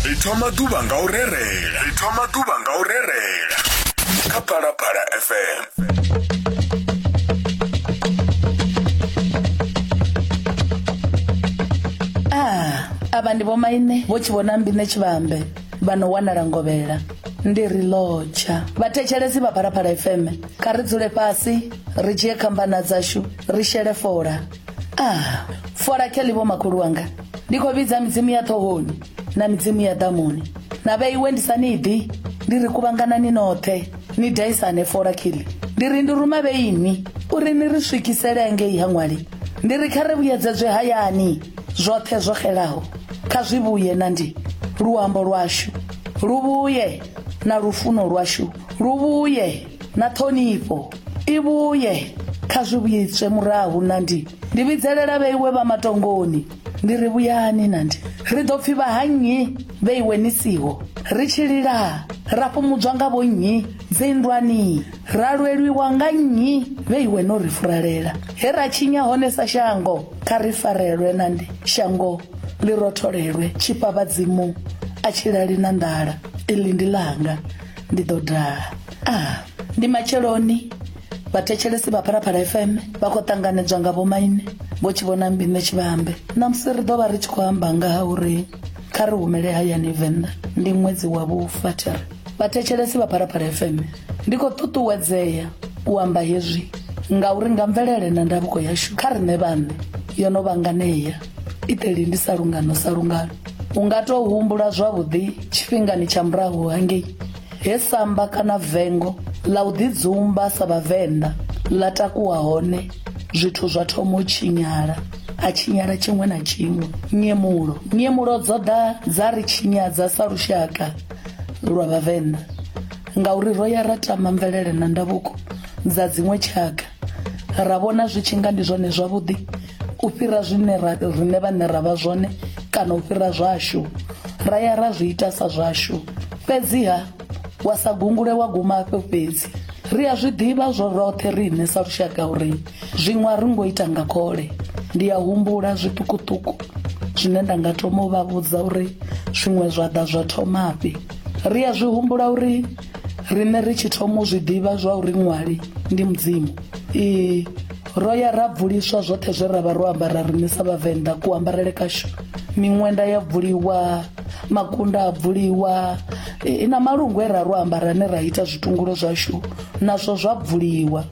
ri thoma ḓuvha nga u rerela ri thoma ḓuvha nga u rerela kha phalaphala fm Ah, avha ndi vhomaine vho tshivhona mbine tshivhambe vha no wanala ngovhela ndi ri lodza vhathetshelesi vha phalaphala fm kha ri dzule fhasi ri dzhie khambana dzashu ri shele fola ah fola kheli vho makhulu wanga ndi khou vhidza midzimu ya ṱhohoni na midzimu ya ḓamuni na vheiwe ndi sa ni ḓi ndi ri kuvhanganani noṱhe ni daisane fola kheli ndi ri ndi ruma vheini uri ni ri swikisele ngei ha ṅwali ndi ri kha ri vhuyedzedzwe hayani zwoṱhe zwo xelaho kha zwi vhuye na ndi luambo lwashu lu vhuye na lufuno lwashu lu vhuye na ṱhonifho i vhuye kha zwi vhuyedzwe murahu na ndi ndi vhidzelela vheiwe vha matongoni ndi ri vhuyani na ndi ri ḓo pfhi vha ha nnyi vheiwe ni siho ri tshi lila ra fhumudzwa nga vho nnyi dzinndwani ra lwelwiwa nga nnyi vheiwe no ri furalela he ra tshinya hone sa shango kha ri farelwe na ndi shango ḽi rotholelwe tshifha vhadzimu a tshilali na nḓala iḽi ndi langa ndi ḓo daha a ah, ndi matsheloni vhathetshelesi vha phalaphala fm vha khou ṱanganedzwa nga vhomaine vho tshi vhona mbine tshivhambe ṋamusi ri ḓo vha ri tshi khou amba nga ha uri kha ri humele hayani venḓa ndi ṅwedzi wa vhufathiri vhathetshelesi vha phalaphala fm ndi khou ṱuṱuwedzea u amba hezwi ngauri nga mvelele na ndavhuko yashu kha riṋe vhaṋe yo no vhanganea iteli ndi sa lungano sa lungano u nga tou humbula zwavhuḓi tshifhingani tsha murahu hangei he samba kana vengo ḽa u ḓidzumba sa vhavenḓa ḽa takuwa hone zwithu zwa thoma u tshinyala a tshinyala tshiṅwe na tshiṅwe nyemulo nyemulo dzo ḓa dza ri tshinyadza sa lushaka lwa vhavenḓa ngauri ro ya ra tama mvelele na ndavhuko dza dziṅwe tshaka ra vhona zwi tshi nga ndi zwone zwavhuḓi u fhira zwine ra rine vhane ra vha zwone kana u fhira zwashu ra ya ra zwi ita sa zwashu fhedziha wa sa gungule wa guma afho fhedzi ri a zwi ḓivha zwo roṱhe riṋe sa lushaka uri zwiṅwe a ri ngo ita nga khole ndi a humbula zwiṱukuṱuku zwine nda nga thoma u vha vhudza uri zwiṅwe zwa ḓa zwa thomafhi ri a zwi humbula uri riṋe ri tshi thoma u zwi ḓivha zwa uri ṅwali ndi mudzimu ee ro ya ra bvuliswa zwoṱhe zwe ra vha ro ambara riṋe sa vhavenḓa kuambarele kashu miṅwenda ya bvuliwa makunda a bvuliwa e, na malungu e ra ro ambara ne ra ita zwitungulo zwashu nazwo zwa bvuliwa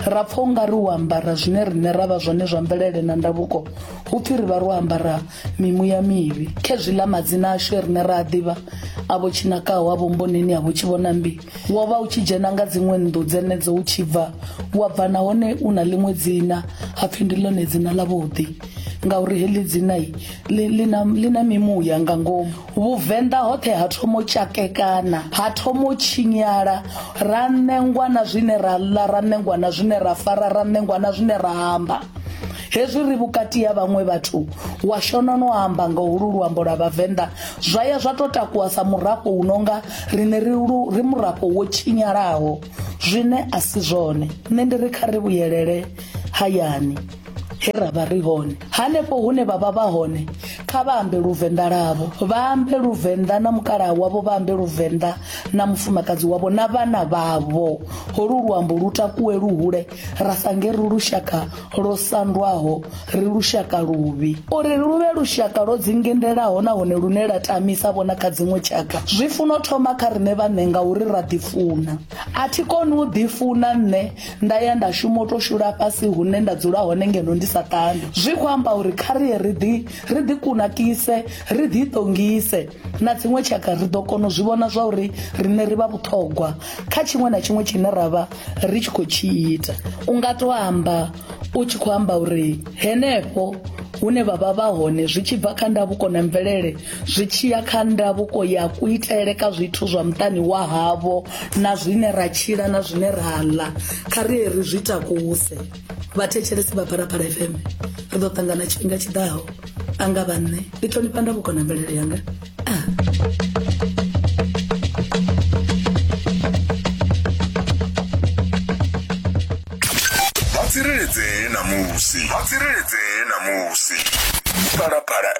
ra pfa u nga ri u ambara zwine riṋe ra vha zwone zwa mvelele na ndavuko hu pfhi ri vha ro ambara mimuya mivhi khezwiḽa madzina ashu rine ra a ḓivha avho tshinakaho avho mboneni avho tshi vhona mbi wo vha u tshi dzhena nga dziṅwe nnḓu dzenedzo u tshi bva wa bva nahone u na ḽiṅwe dzina ha pfhi ndi ḽone dzina ḽa vhuḓi ngauri heḽi dzina ḽi na mimuya nga ngomu Vhuvenḓa hoṱhe ha thoma u tshakekana, ha thoma u tshinyala, ra ṋengwa na zwine ra ḽa, ra ṋengwa na zwine ra fara, ra ṋengwa na zwine ra amba. Hezwi ri vhukati ha vhaṅwe vhathu, wa shona no amba nga holu luambo lwa Vhavenḓa, zwa ya zwa to takuwa sa murafho u nonga rine ri lu ri murafho wo tshinyalaho, zwine a si zwone. Nṋe ndi ri kha ri vhuyelele hayani. he ra vha ri hone hanefho hune vha vha vha hone kha vha ambe luvenḓa lavo vha ambe luvenḓa na mukalaha wavho vha ambe luvenḓa na mufumakadzi wavho na vhana vhavho holu luambo lu takuwe luhule ra sange ri lushaka lwo sandwaho ri lushaka luvhi uri lu vhe lushaka lwo dzingendelaho nahone lune la tamisa vhona kha dziṅwe tshaka zwi funa u thoma kha riṋe vhaṋe ngauri ra ḓifuna a thi koni u ḓifuna nṋe nda ya nda shuma u to shula fhasi hune nda dzula hone ngeno ndi sa ṱani zwi khou amba uri kha ri ri ḓi ri ḓi kunakise ri ḓi ṱongise na dziṅwe tshaka ri ḓo kona u zwi vhona zwa uri riṋe ri vha vhuṱhogwa kha tshiṅwe na tshiṅwe tshine ra vha ri tshi khou tshi ita u nga to amba u tshi khou amba uri henefho hune vha vha vha hone zwi tshi bva kha ndavhuko na mvelele zwi tshi ya kha ndavhuko ya kuitele ka zwithu zwa muṱani wa havho na zwine ra tshila na zwine ra ḽa kha ri ri zwi takuse vhathetshelesi vha phalaphala fm ri ḓo ṱangana tshifhinga tshi ḓaho a nga vha nṋe ndi ṱhonifha ndavhuko na mvelele yanga ah. tsireledzee namusi vha tsireledzee namusi phalaphala